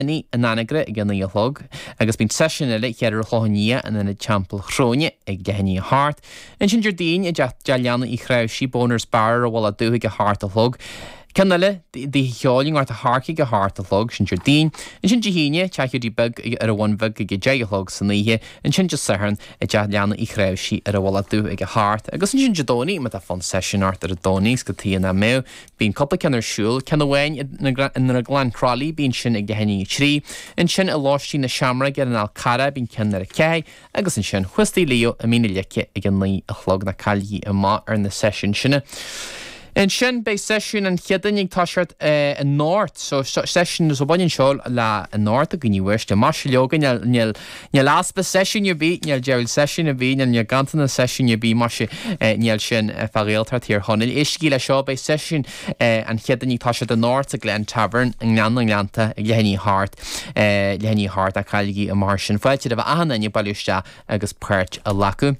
Ní in Anagaire ag a naoi a chlog, agus bíonn seisiún eile oíche Chéadaoin in Ionad Teampaill Chróine ag leath i ndiaidh a hocht. Ansin Déardaoin i dteach Dé Leanaí Uí Chraobhscaí, Bonner's Bar ar an Mhullach Dubh ag a hocht a chlog. Ceann eile d'oíche cheoil i nGort a' Choirce ag a hocht a chlog, sin Déardaoin. Ansin Dé hAoine, teach Hiúdaí Beag ar an Bhun Bheag ag a deich a chlog san oíche. Ansin Dé Sathairn i dteach Leanaí Uí Chraobhscaí ar an Mhullach Dubh ag a hocht. Agus ansin Dé Domhnaigh, má tá fonn seisiúin ort ar an Domhnach is go Tigh an Ath Mhadh, Bíonn cúpla ceann ar siúl, ceann amháin i nDrioglann Chroithlí, bíonn sin ag leath i ndiaidh a 3, ansin i Lóistín na Seamróige ar an Fhál Carrach, bíonn ceann ar a ceathair, agus ansin thuas Tigh Leo i Mín na Leice ag a naoi a chlog, ná cailligí amach ar na seisiúin sin. Ansin beidh seisiún an Chéadaoin ag toiseacht anocht, so seisiún, so baineann seo le anocht, a dhaoine uaisle, maise leoga níl, Níl easpa seisiúin ar bith, níl deireadh seisiúin ar bith, níl, níl ganntanas seisiúin ar bith, maise, níl sin fá Ghaeltacht Thír Chonaill. Éistigí le seo, beidh seisiúin an Chéadaoin, tá siad anocht sa Glen Tavern, i nGleann na nGleanntach, ag leath i ndiaidh a hocht, leath i ndiaidh a hocht, ná cailligí amach air sin. Fáilte roimh achan duine bailiú isteach agus páirt a ghlacadh.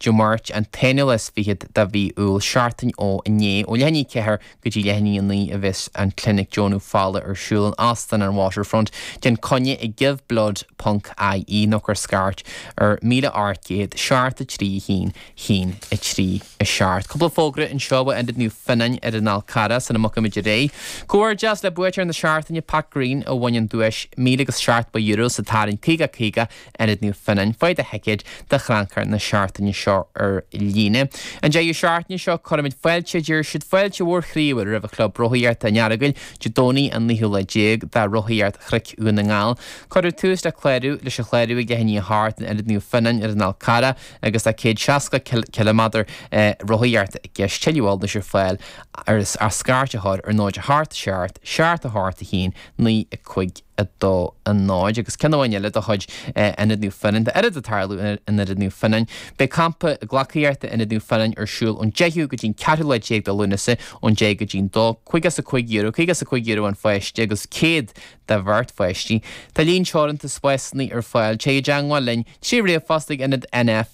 Dé Máirt an t-aonú is fichead de mhí Iúil, seachtain ó inné. Ó leath i ndiaidh a ceathair go dtí leath i ndiaidh a naoi a bheas an clinic deonú fola ar siúl in Óstán an Waterfront. Déan coinne ag giveblood ponc IE nó cuir scairt ar 1800 73 1 1 3 7. Cúpla fógra anseo ó Ionad Naomh Fionnán ar an Fhál Carrach sula mbeidh muid réidh. Comhghairdeas le buaiteoir na seachtaine, Pat Green a bhain an duais €1007 sa tarraingt 50 50, Ionad Naomh Fionnán, faigh do thicéad do chrannchur na seachtaine seo ar líne. An deireadh seachtaine seo cuirimid fáilte, deir siad, fáilte mhór chroíúil roimh Chlub Rothaíochta an Earagail, Dé Domhnaigh an naoú lá déag do Rothaíocht Chnoic Dhún na nGall. Cuirfear tús le clárú, leis an chlárú ag leath i ndiaidh a hocht in Ionad Naomh Fionnán ar an Fhál Carrach agus tá céad seasca ciliméadar rothaíochta i gceist. Tuilleadh eolais ar fáil ach scairt a chur ar 0 a hocht, seacht, seacht a hocht a haon, 9, 5, 2, 0, agus ceann amháin eile de chuid Ionad Naomh Fionnán, tá oiread ag tarlú in Ionad Naomh Fionnán. Beidh Campa Gleacaíochta in Ionad Naomh Fionnán ar siúl ón 10ú go dtí an 14ú lá de Lúnasa, ón deich go dtí an dó. Caoga is a cúig euro, caoga is a cúig euro an pháiste agus céad do bheirt pháistí. Tá líon teoranta spásanna ar fáil. Téigh i dteangmháil linn trí ríomhphost ag Ionad N.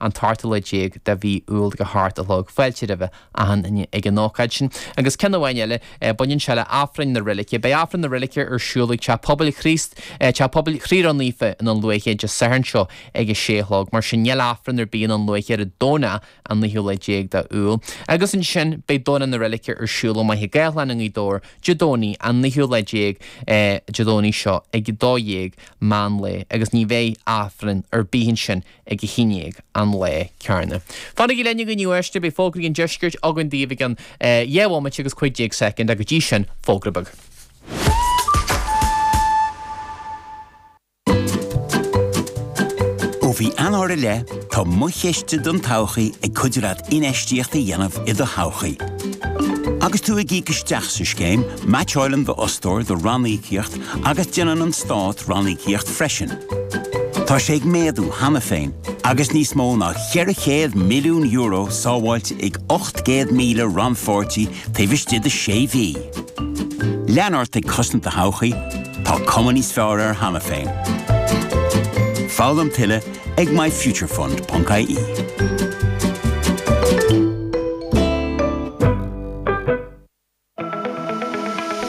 an t-ochtú lá déag de mhí Iúil ag a hocht a chlog fáilte roimh achan duine ag an ócáid sin. Agus ceann amháin eile, baineann sé le hAifreann na Reilige. Beidh Aifreann na Reilige ar siúl ag Teach Pobail Chríost, Teach Pobail Chroí Ró Naofa i nDún Lúiche Dé Sathairn seo ag a sé a chlog. Mar sin, níl Aifreann ar bith i nDún Lúiche ar an Domhnach an naoú lá déag de Iúil. Agus ansin, beidh Domhnach na Reilige ar siúl i Machaire Gathlán i nGaoth Dobhair Dé Domhnaigh an naoú lá déag, Dé Domhnaigh seo, ag a dó dhéag meán lae. Agus ní bheidh Aifreann ar bith ansin ag a chinn ar an lá céarna. Fanaigí linn inniu, a éisteoirí, beidh fógraí an deiscirt againn daoibh i gceann dhá bhomaite agus cúig déag soicind, ach go dtí sin, fógra beag. Ó mhí Eanáir i leith, tá Mo Chiste don Todhchaí ag cuidiú leat infheistíocht a dhéanamh i do thodhchaí. Agus tú ag íoc isteach sa scéim, meaitseálann d'fhostóir do ranníocaíocht agus déanann an stát ranníocaíocht freisin. Tá sé ag méadú cheana féin agus níos mó ná €400 milliún sábháilte ag 800,000 rannpháirtí taobh istigh de sé mhí. Lean ort ag cosaint do thodhchaí, tá cuma níos fearr air cheana féin. Foghlaim tuilleadh ag myfuturefund.ie.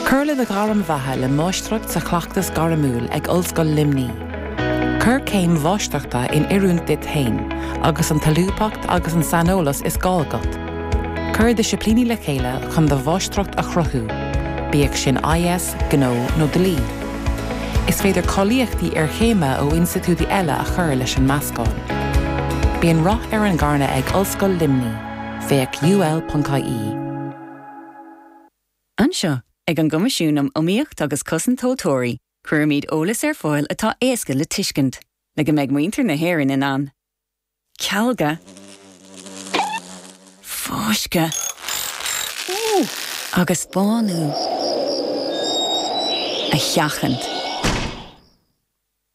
Cuir le do ghairm bheatha le Máistreacht sa Chleachtas Gairmiúil ag Ollscoil Luimní. Cuir céim Mháistreachta in oiriúint duit féin agus an tsolúbthacht agus an saineolas is gá agat. Cuir disciplíní le chéile chun do Mháistreacht a chruthú, bíodh sin IS, Gnó nó Dlí. Is féidir cáilíochtaí iarchéime ó institiúidí eile a chur leis an meascán. Bíonn rath ar an ngairm ag Ollscoil Luimní, féach ul.ie. Anseo, ag an gCoimisiún um Iomaíocht agus Cosaint Tomhaltóirí, cuirimid eolas ar fáil atá éasca le tuiscint, le go mbeidh muintir na hÉireann in ann cealgadh, fáisceadh agus bánú a sheachaint.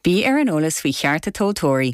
Bí ar an eolas faoi chearta tomhaltóirí.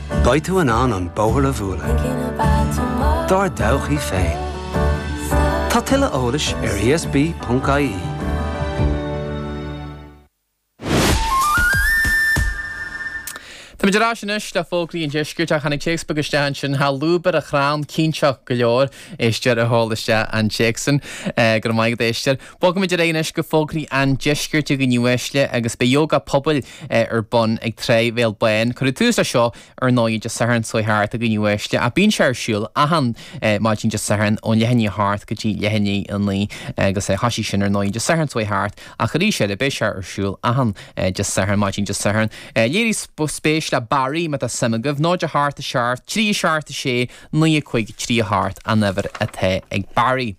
Beidh tú in ann an bóthar a bhualadh dár dtodhchaí féin. Tá tuilleadh eolais ar ESB.ie. Táimid ar ais anois le fógraí an Deiscirt ach tháinig téacs beag isteach ansin, tá lúb ar a chrann cinnteach go leor, éisteoir a sheol isteach an téacs sin. Go raibh maith agat a éisteoir. Bogfaimid ar aghaidh anois go fógraí an Deiscirt a dhaoine uaisle agus beidh Ióga Pobail ar bun ag trá Bhéal Bán. Cuireadh tús leis seo, ar ndóigh, Dé Sathairn seo thart a dhaoine uaisle, ach bíonn sé ar siúl achan mhaidin Dé Sathairn ón leath i ndiaidh a hocht go dtí leath i ndiaidh a naoi, agus thosaigh sin, ar ndóigh, Dé Sathairn seo thart, ach arís eile, beidh sé ar siúl achan Dé Sathairn, maidin Dé Sathairn. Léirigh spéis le Barry, má tá suim agaibh. 0 a 8 7 3 a 7 6 9 5 3 a 8 an uimhir atá ag Barry.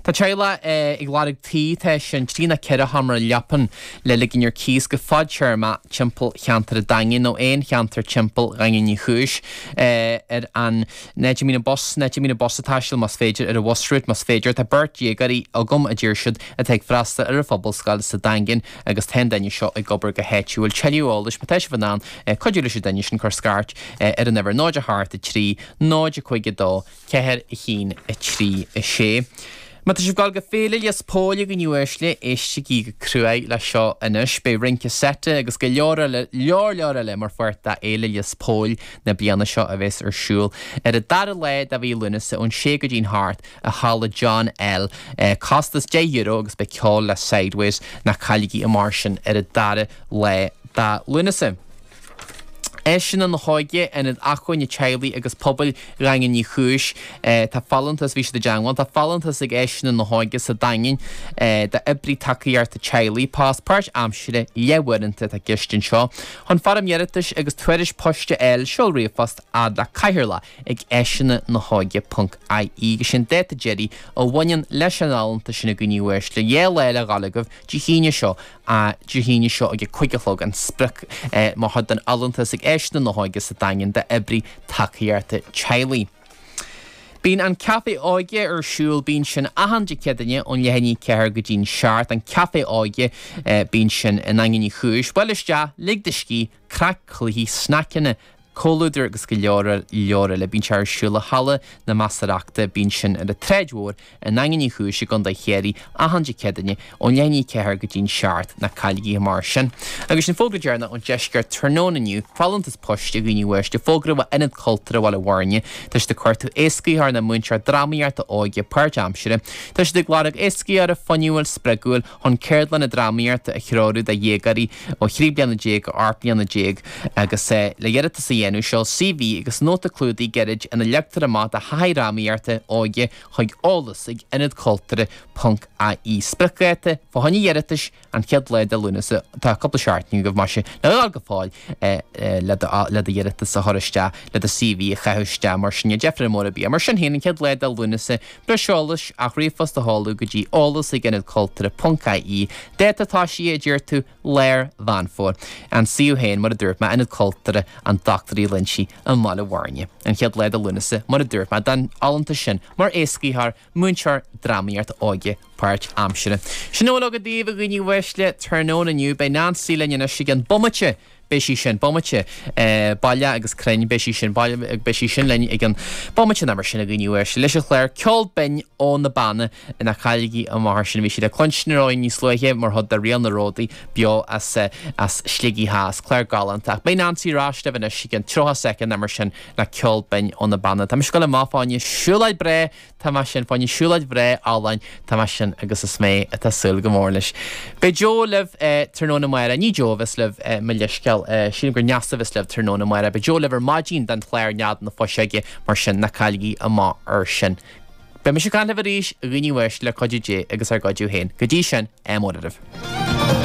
Tá teaghlach ag lorg tí teach seo trí nó ceithre sheomra leapan le ligean ar cíos go fad-téarmach timpeall cheantar an Daingin nó aon cheantar timpeall Dhaingean Uí Chúis ar an, in áit a mbíonn bus ag taisteal más féidir, ar an Bhus Route más féidir. Tá beirt dhéagóirí agam a deir siad atá ag freastal ar an Phobalscoil sa Daingean agus tá an duine seo ag obair go háitiúil. Tuilleadh eolais má tá sibh in ann cuidiú leis an duine sin cuir scairt ar an uimhir 08 43 05 2 4, 1, 3, 6, Má tá sibh ag dul go Féile Lios Póil a dhaoine uaisle, éistigí go cruinn leis seo anois. Beidh rince seite agus go leor leor leor eile mar pháirt de Fhéile Lios Póil na bliana seo a bhéas ar siúl ar an dara lá de mhí Lúnasa ón sé go dtí'n hocht i halla John L. Costas deich euro agus beidh ceol le Sideways. Ná cailligí é mar sin ar an dara lá de Lúnasa. Áiseanna na hÓige, Ionad Acmhainne Teaghlaigh agus Pobail Dhaingean Uí Chúis. Tá folúntas, bhí siad i dteangmháil, tá folúntas ag Áiseanna na hÓige sa Daingean d'Oibrí Tacaíochta Teaghlaigh, post páirt aimsire, leabhar uaireanta, atá i gceist anseo. Chun foirm iarratais agus tuairisc poist a fháil, seol ríomhphost a fhad le cathaoirleach ag Áiseanna na hÓige ponc IE agus sé'n dáta deiridh a bhaineann leis an fholúntas sin a dhaoine uaisle le dheileáil a fháil agaibh Dé hAoine seo, a Dé hAoine seo ag a cuig a chlog an sprioc-am acu don fholúntas ag Áiseanna na hÓige sa Daingean d'Oibrí Tacaíochta Teaghlaigh. Bíonn an Café Óige ar siúl bíonn sin achan Dé Céadaine ón leath i ndiaidh a ceathair go dtí'n seacht. An Café Óige bíonn sin i nDaingean Uí Chúis. Buail isteach, lig do scíth, craic, cluichí, sneaiceanna, comhluadar agus go leor leor eile. Bíonn sé ar siúl i Halla na Measarachta, bíonn sin ar an tSráid Mhór i nDaingean Uí Chúis i gContae Chiarraí achan Dé Céadaine ón leath i ndiaidh a ceathair go dtí an seacht. Ná cailligí é mar sin. Agus an fógra deireanach ón Deisceart tráthnóna inniu, folúntas poist, a dhaoine uaisle, fógra ó Ionad Cultúrtha Bhaile Bhuirne, tá siad ag cuartú éascaitheoir nó múinteoir drámaíochta óige páirt-aimsire. Tá siad ag lorg éascaitheora fuinniúil, spreagúil, chun ceardlanna drámaíochta a threorú do dhéagóirí ó thrí bliana déag go hocht mbliana déag agus, le d'iarratas a dhéanamh, seol CV agus nóta clúdaigh gairid ina leagtar amach do thaithí drámaíochta óige chuig, eolas ag ionad cultúrtha ponc IE. Spriocdháta fá choinne d'iarratais, an chéad lá de Lúnasa Tá cúpla seachtain agaibh, más ea, leabhar go fóill le d'iarratas a chur isteach le do CV a chaitheamh isteach mar sin. Ná deifre mhór ar bith air. Mar sin féin, an chéad lá de Lúnasa Breis eolais, ach ríomhphost a sheoladh go dtí eolas ag ionad cultúrtha ponc IE, Dáta tosaigh, a deir tú? Lár Mheán Fómhair. An suíomh féin, mar a dúirt mé, Ionad Cultúrtha an Dr Uí Loinsigh i mBaile Bhuirne. An chéad lá de Lúnasa, mar a dúirt mé, don fholúntas sin mar éascaitheoir, múinteoir drámaíochta óige páirt aimsire. Sin a bhfuil agam daoibh, a dhaoine uaisle, tráthnóna inniu. Beidh Nancy linn anois i gcionn bomaite! beidh sí sin, bomaite, baile agus crainn, beidh sí sin, baile agus beidh sí sin linn i gceann bomaite ná mar sin a gcuimhníodh air sin leis an chlár, ceol binn ó na Beanna ná cailligí amach air sin, bhí sí le cluinstin ar aghaidh níos luaithe mar chuid de riail na ródaí beo as, as Sligeach Theas, clár galánta. Ach beidh Neansaí ar ais libh anois i gceann tríocha soicind ná mar sin le ceol binn ó na Beanna. Tá mise ag gabháil amach fá choinne siúlóid bhreá, Tá mé sin, fá choinne siúlóid bhreá álainn, tá mé sin agus is mé atá súil go mór leis. Beidh Jó libh tráthnóna amárach, ní Jó a bheas libh, mo leithscéal, sílim gur Neasa a bheas libh tráthnóna amárach, beidh Jó libh ar maidin don chlár Nead na Fuiseoige mar sin ná cailligí amach air sin. Beidh mise ag caint libh arís, a dhaoine uaisle, le cuidiú Dé agus ár gcuidiú féin. Go dtí sin, ádh mór oraibh.